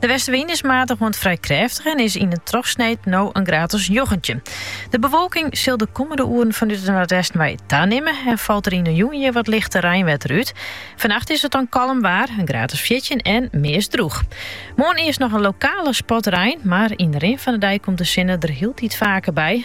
De westewyn is matig oant frij krêftich en is yn in trochsneed no in graad as njoggentjin. De bewolking sil de kommende oeren fanút it westen wei tanimme en falt der yn de jûn hjir wat lichte reinwetter út. Vannacht is it dan kalm waar, in graad as fjirtjin en meast droech. Moarn earst noch in lokale spat rein, mar yn de rin fan de dei komt de sinne der hieltyd faker by.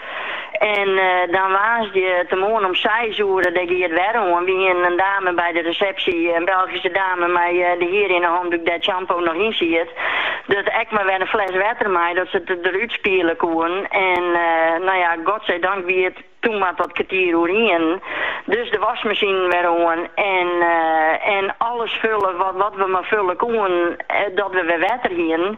En dan woansdeitemoarn om seis oere, dêr gie it wer oan, wy hiene in dame by de resepsje, in Belgyske dame, mei de hier yn 'e handoek dêr't shampoo noch yn siet, dus ek mar wer in fles wetter mei, dat se it derút spiele koene. En no ja, godzijdank wie it toen mar tot kertier oer ienen. Dus de wasmasine wer oan en alles fulle wat we mar fulle koenen, dat we wer wetter hiene.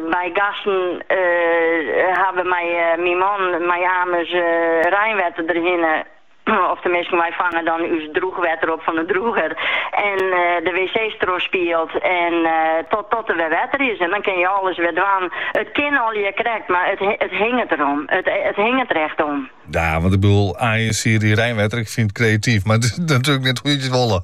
Wy gasten hawwe, myn man mei amers reinwetter derhinne, of teminsten wy fange dan ús droechwetter op fan de droeger en de wc's trochspield en totdat der wer wetter is en dan kinne je alles wer dwaan. It kin allegear krekt, mar it hinget der om. It hinget der echt om. Ja, want ik bedoel, aanjesier dy reinwetter, ik fyn it kreatyf, mar it is natuerlik net hoe't je it wolle.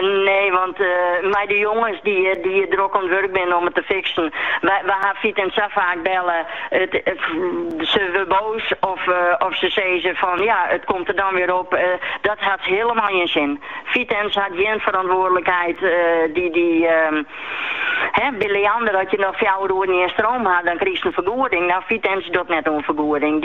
Nee, want mei de jonges dy't hjir drok oan 't wurk binnen om it te fiksen. We ha Vitens sa faak belle, se wurde boos of se sizze fan ja, it komt der dan wer op. Dat hat hielemaal gjin sin. Vitens hat gjin ferantwoardlikheid. By Liander, as je noch fjouwer oeren gjin stroom ha, dan krichst in fergoeding. No, Vitens docht net oan fergoeding.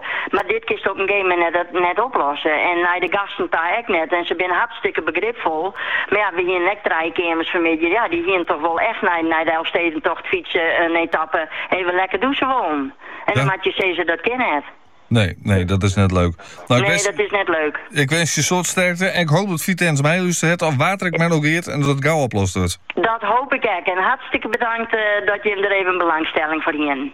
Mar dit kinst op in gegeven moment net oplosse en nei de gasten ta ek net. En se binne hartstikke begripfol. Mar ja, we hienen ek trije keamers fermiddei, ja, dy hienen toch wol echt nei de Elfstedentocht fytsen in etappe even lekker dûse wollen. En dan moatte je sizze, dat kin net. Nee, nee, dat is net leuk. Nou, nee, dat is net leuk. Ik winskje jo in soad sterkte en ik hoop dat Vitens meilústert of wa't der ek mar oer giet en dat it gau oplost wurdt. Dat hoop ik ek. En hartstikke bedankt eh, dat jim der even belangstelling foar hienen.